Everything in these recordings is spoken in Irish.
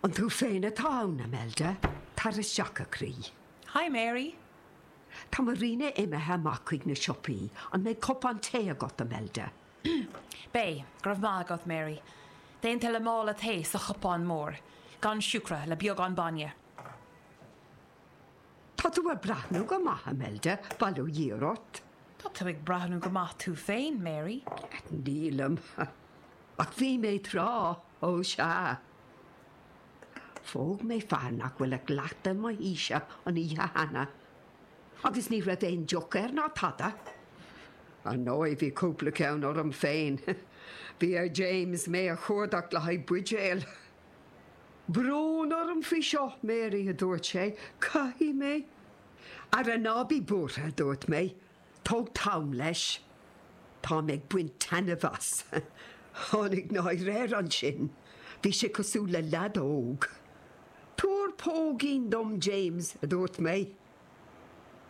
An tú féin atá ann, Imelda? Tar isteach, a chroí. Hi, Mary. Tá Marina imithe amach chuig na siopaí. An mbeidh cupán tae agat, Imelda? Beidh, go raibh maith agat, Mary. Déanta le mála tae sa chupán mór, gan siúcra, le beagán bainne. Tá tú ag breathnú go maith, Imelda, bail ó Dhia ort. Tá tú ag breathnú go maith tú féin, Mary. Nílim, ach bhí mé tráth, ó sea. Phóg mé fear nach bhfuil ach leath de mo haoise an oíche cheana, agus ní raibh aon deoch air ná tada. Ar ndóigh, bhí cúpla ceann orm féin. Bhí ar James mé a chuardach le haghaidh buidéil. Brón orm faoi seo, Mary, a dúirt sé, caithfidh mé. Ara ná bí buartha, a dúirt mé, tóg t'am leis. Táim ag baint taitneamh as. Tháinig náire air ansin. Bhí sé cosúil le lead óg. Tabhair póigín dom, James, a dúirt mé.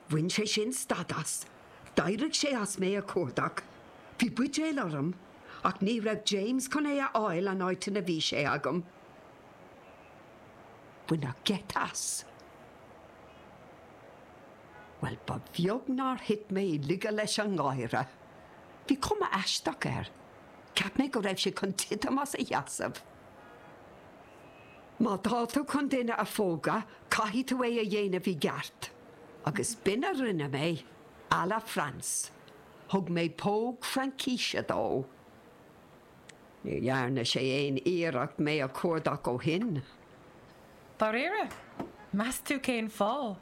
Bhain sé sin stad as. D'éirigh sé as mé a chuardach. Bhí buidéal orm, ach ní raibh James chun é a fháil an áit ina bhí sé agam. Baineadh geit as. Bhuel, ba bheag nár thit mé i laige leis an ngáire. Bhí cuma aisteach air. Cheap mé go raibh sé chun titim as a sheasamh. Má tá tú chun duine a phógadh, caithfidh tú é a dhéanamh i gceart. Agus b'in a rinne mé, à la France. Thug mé póg Fraincíse dó. Ní dhearna sé aon iarracht mé a chuardach ó shin. Dáiríre? Meas tú cén fáth?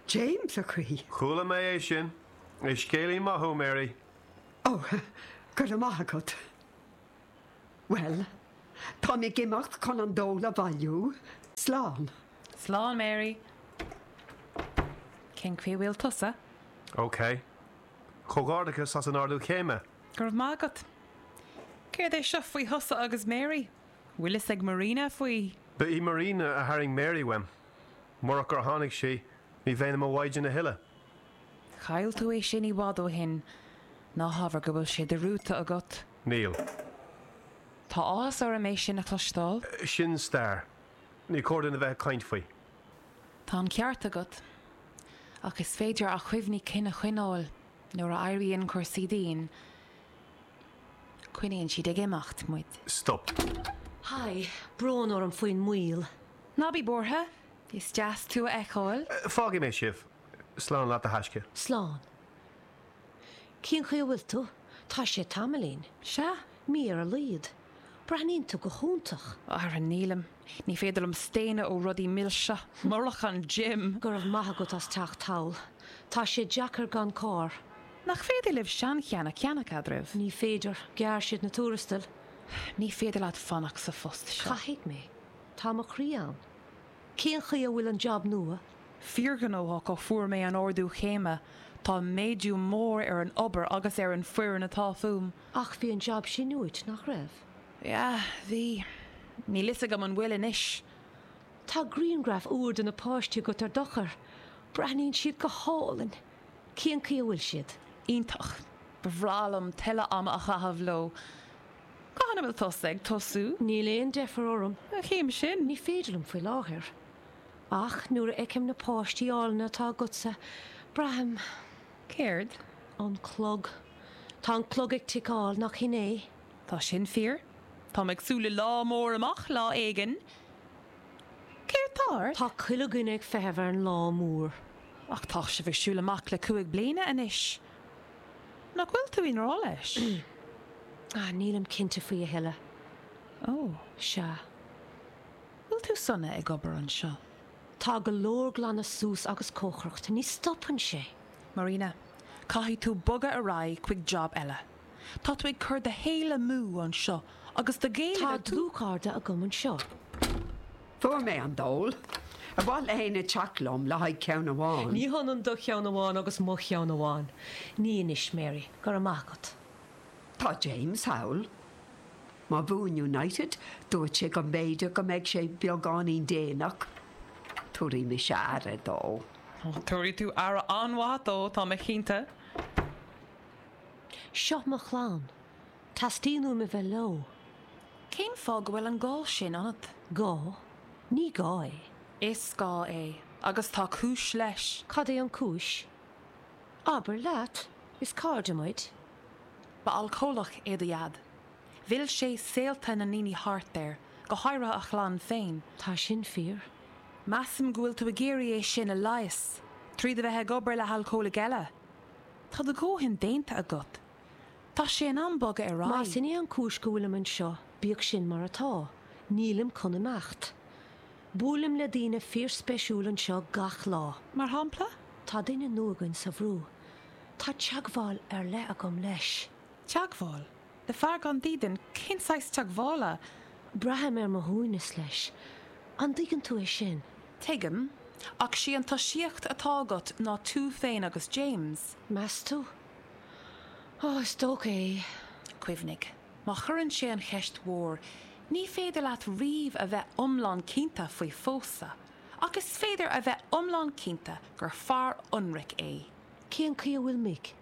James, a chroí. Chuala mé é sin. Is scéalaí maith thú, Mary. Ó, go raibh maith agat. Bhuel, táim ag imeacht chun an dól a bhailiú. Slán. Slán, Mary. Cén chaoi a bhfuil tusa? OK. Comhghairdeachas as an ardú céime! Go raibh maith agat. Céard é seo faoi thusa agus Mary? Bhfuil fhios ag Marina faoi? Ba í Marina a tharraing Mary uaim. Murach gur tháinig sí, ní bheinn i mo mhaighdean a thuilleadh. Chaill tú é sin i bhfad ó shin. Ná habair go bhfuil sé dearmadta agat. Níl. Tá áthas orm é sin a chloisteáil. Sin stair. Ní cóir dúinn a bheith ag caint faoi. Tá an ceart agat. Ach is féidir na cuimhní cinn a choinneáil nuair a éiríonn cúrsaí dian. Coinníonn siad ag imeacht muid. Stop. Haigh, brón orm faoin moill. Ná bí buartha. Is deas tú a fheiceáil. Fágfaidh mé sibh. Slán leat a thaisce. Slán. Cén chaoi a bhfuil tú? Tá sé tamaillín. Sea, mí ar a laghad. Breathnaíonn tú go hiontach. Ara nílim. Ní féidir liom staonadh ó rudaí milse. Murach an gym! Go raibh maith agat as teacht thall. Tá sé deacair gan carr. Nach féidir libh seancheann a cheannach eadraibh? Ní féidir. Ghearr siad na tuarastail. Ní féidir leat fanacht sa phost seo. Caithfidh mé. Tá mo chroí ann. Cén chaoi a bhfuil an jab nua? Fíorghnóthach ó fuair mé an ardú céime. Tá méadú mór ar an obair agus ar an foireann atá fúm. Ach bhí an jab sin uait, nach raibh? Yeah, bhí. Níl fhios agam an bhfuil anois. Tá griangraf úr de na páistí agat ar d'eochair. Breathnaíonn siad go hálainn. Cén chaoi a bhfuil siad? Iontach. Ba bhreá liom tuilleadh ama a chaitheamh leo. Cathain a bhfuil tusa ag tosú? Níl aon deifir orm. An chéim sin? Ní féidir liom faoi láthair. Ach nuair a fheicim na páistí álainne atá agatsa, braithim. Céard? An clog. Tá an clog ag ticeáil, nach shin é? Tá sin fíor. Tá mé ag súil le lá mór amach, lá éigin. Céard tá ort? Tá chuile dhuine ag feitheamh ar an lá mór. Ach tá sibh ag siúl amach le cúig bliana anois. Nach bhfuil tú i ngrá leis? Ah, nílim cinnte faoi a thuilleadh. Ó. Sea. Bhfuil tú sona ag obair anseo? Tá go leor glanadh suas agus cócaireacht. Ní stopann sé. Marina, Caithfidh tú bogadh ar aghaidh chuig job eile. Tá tú ag cur do shaoil amú anseo agus do Ghaeilge Tá dlúthchairde agam anseo. Fuair mé an dól. Ar mhaith le héinne teacht liom le haghaidh ceann amháin? Ní hionann do cheann amháin agus mo cheann amháin. Ní anois, Mary. Go raibh maith agat. Tá James thall. Má bhuann United, dúirt sé go mb'fhéidir go mbeidh sé beagáinín déanach. Tabharfaidh mise aire dó. Tabharfaidh tú aire an-mhaith dó, tá mé cinnte. Seo mo chlann. Teastaíonn uaim a bheith leo. Cén fáth go bhfuil an gá sin ionat? Gá? Ní gá é. Is gá é. Agus tá cúis leis. Cad é an cúis? Abair leat! Is cairde muid. Ba alcólach é do Dhaid. Mhill sé saolta na ndaoine thart air, go háirithe a chlann féin. Tá sin fíor. Measaim go bhfuil tú ag iarraidh é sin a leigheas, tríd a bheith ag obair le halcólaigh eile. Tá do dhóthain déanta agat. Tá sé in am bogadh ar aghaidh. Más in é an cúis go bhfuilim anseo, bíodh sin mar atá. Nílim chun imeacht. Buailim le daoine fíorspeisiúil anseo gach lá. Mar shampla? Tá duine nua againn sa bhrú. Tá teagmháil ar leith agam leis. Teagmháil? Le fear gan dídean, cén saghas teagmhála? Braithim ar mo shuaimhneas leis, an dtuigeann tú é sin? Tuigim, ach sí an tosaíocht atá agat ná tú féin agus James. Meas tú? Ó, is dócha é. Cuimhnigh, má chuireann sé an cheist mhór, ní féidir leat riamh a bheith iomlán cinnte faoi phósadh, ach is féidir a bheith iomlán cinnte gur fear ionraic é. Cén chaoi a bhfuil Mick?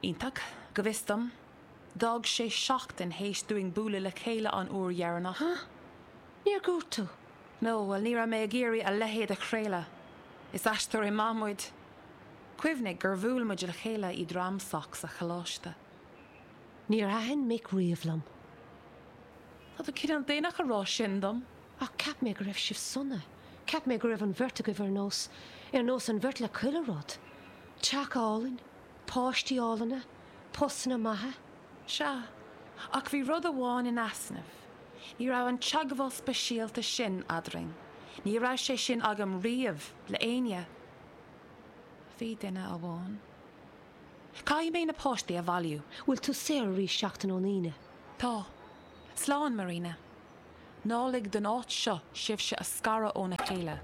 Iontach, go bhfios dom. D'fhág sé seachtain théis dúinn bualadh le chéile an uair dheireanach. Huh? Níor dhúirt tú? No, bhuel, ní raibh mé ag iarraidh a leithéid a chraoladh. Is aisteoirí maith muid. Cuimhnigh gur bhuail muid le chéile i dTram Soc sa choláiste. Níor thaitin Mick riamh liom. Tá tú cineál déanach a rá sin dom. Ach cheap mé go raibh sibh sona. Cheap mé go raibh an bheirt agaibh ar nós, ar nós an bheirt le chuile rud. Teach álainn, páistí álainne. Postanna maithe? Sea. Ach bhí rud amháin in easnamh. Ní raibh an teagmháil speisialta sin eadrainn. Ní raibh sé sin agam riamh le éinne. Bhí duine amháin. Caithfidh mé na páistí a bhailiú. Bhfuil tú saor arís seachtain ón Aoine? Tá. Slán, Marina. Ná lig don áit seo sibhse a scaradh óna chéile.